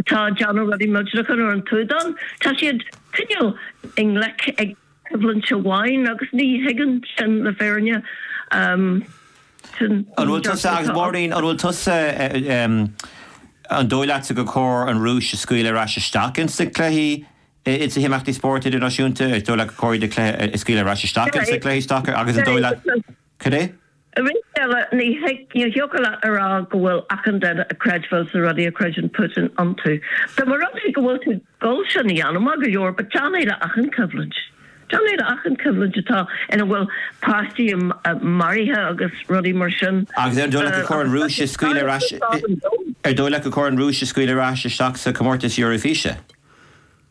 atá ag déanamh rudaí ar an tsúdán. Tá siad cineál i ngleic le coimhlint amháin agus ní thuigim sin le fírinne. An bhfuil tusa agus Máirín, an bhfuil tusa, an dóigh leatsa gur chóir an Rúis a scaoileadh ar ais isteach ins na cluichí, ins na himeachtaí spóirt idirnáisiúnta? An dóigh leat gur chóir iad a scaoileadh ar ais isteach ins na cluichí sacair agus an dóigh leat, cad é? Arís eile, ní thiocfadh leat a rá go bhfuil achan duine ag creidbheáil sna rudaí a chreideann Putin iontu. Dá mba rud é go bhfuil tú ag gabháil sin a dhéanamh, maith go leor, but déan é le achan choimhlint. Déan é le achan choimhlint atá ina bhfuil páistí maraithe agus rudaí mar sin. Agus an dóigh leat gur chóir an Rúis a scaoileadh ar ais isteach sa chomórtas Eoraifíse?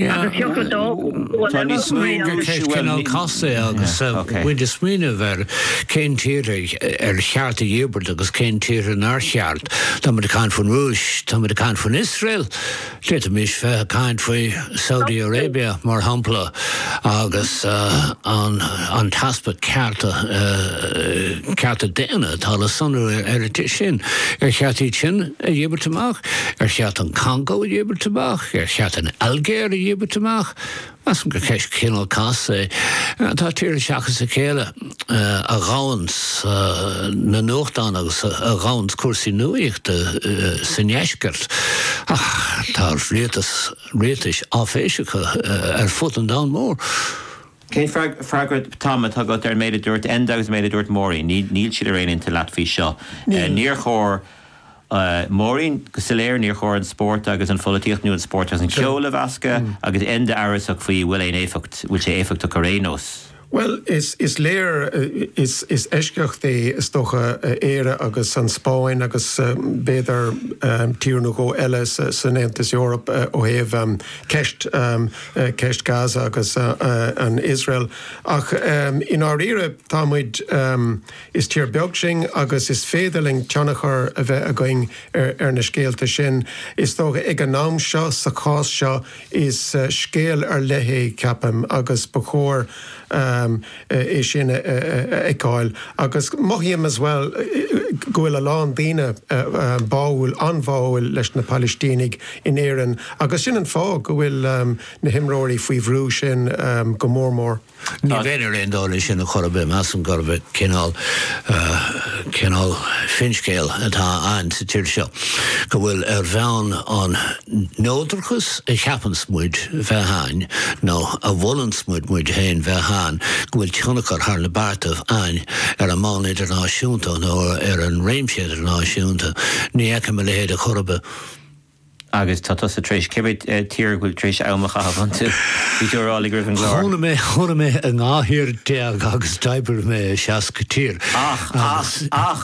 Agus thiocfadh dó bua eile a chur in áit. Ceist cineál casta é agus muid ag smaoineamh ar cén tír ar cheart a dhíbirt agus cén tír nár cheart. Tá muid ag caint faoin Rúis, tá muid ag caint faoin Iosrael, d'fhéadfaimis bheith ag caint faoi Saudi Arabia mar shampla agus an t-easpa cearta daonna atá le sonrú sna tíortha sin. Ar cheart iad sin? a dhíbirt amach? Ar cheart an Congó a dhíbirt amach? Ar cheart an Ailgéir a dhíbirt amach? Measaim-se gur ceist cineál casta é. Tá tíortha seachas a chéile a dhomhain sna nuachtáin agus a dhomhain cúrsaí nuaíochta sa ndeisceart ach tá rialtais áiféiseacha ar fud an domhain mhóir. Cén freagra, Tom, atá agat ar an méid a dúirt Enda agus an méid a dúirt Máirín? Níl siad ar aon intinn leat faoi seo. Níor chóir, Máirín, go soiléir, níor chóir an spórt agus an pholaitíocht nó an spórt agus an ceol a mheascadh agus Enda amhrasach faoi bhfuil aon éifeacht, bhfuil sé éifeachtach ar aon nós. Bhuel, is léir, is eisceacht í is dócha Éire agus an Spáinn agus b'fhéidir tír nó dhó eile san Aontas Eorpach ó thaobh ceist, ceist Gaza agus an Iosrael ach i ndáiríre tá muid, is tír beag sinn agus is féidir linn tionchar a bheith againn ar na scéalta sin. Is dócha ag an am seo, sa chás seo, is scéal ar leith í, ceapaim, agus ba chóir, é sin a fheiceáil agus mothaím as well go bhfuil a lán daoine báúil, an-bháúil leis na Palaistínigh in Éirinn agus sin an fáth go bhfuil na himreoirí faoi bhrú sin go mór mór. Ní bheinn ar aon dul leis sin chor ar bith, measaim gurb é cineál, cineál finscéal atá ann sa tír seo go bhfuil ar bhonn an, neodrachas a cheapann muid bheith ann nó a mholann muid muid féin bheith ann go bhfuil tionchar thar na bearta ann ar an mbonn idirnáisiúnta nó ar an réimse idirnáisiúnta, ní fheicim a leithéid ar chor ar bith. Agus tá tusa tar éis cé mhéad tír a bhfuil tú tar éis am a chaitheamh iontu, bhí tú ag rá liom roimh an gclár. Chónaigh mé, chónaigh mé in dhá thír déag agus d'oibrigh mé i seasca tír. Ach, ach, ach.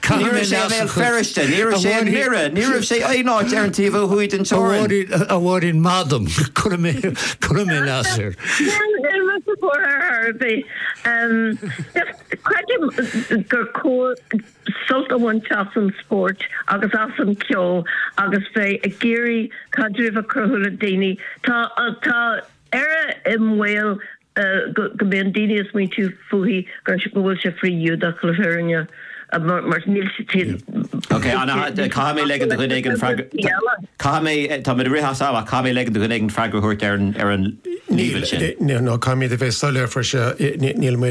Ní raibh sé i mBéal Feirste, ní raibh sé i nDoire, ní raibh sé aon áit ar an taobh ó thuaidh den teorainn. A Mháirín maith dom, cuirfidh mé ceist air. Níl mé sa tóir ar fhear ar bith. Creidim gur chóir sult a bhaint as an spórt agus as an cheol agus bheith ag iarraidh caidreamh a chruthú le daoine. Tá. Éire i mbaol go mbíonn daoine ag smaointiú fúithi go bhfuil sé frith-Ghiúdach le fírinne mar níl siad Ok, anall, caithfidh mé ligean do dhuine éigin freagra, caithfidh mé, tá muid ag rith as am ach caithfidh mé ligean do dhuine éigin freagra a thabhairt ar an líomhain sin. Níl, nó caithfimid a bheith soiléir faoi seo, níl mé.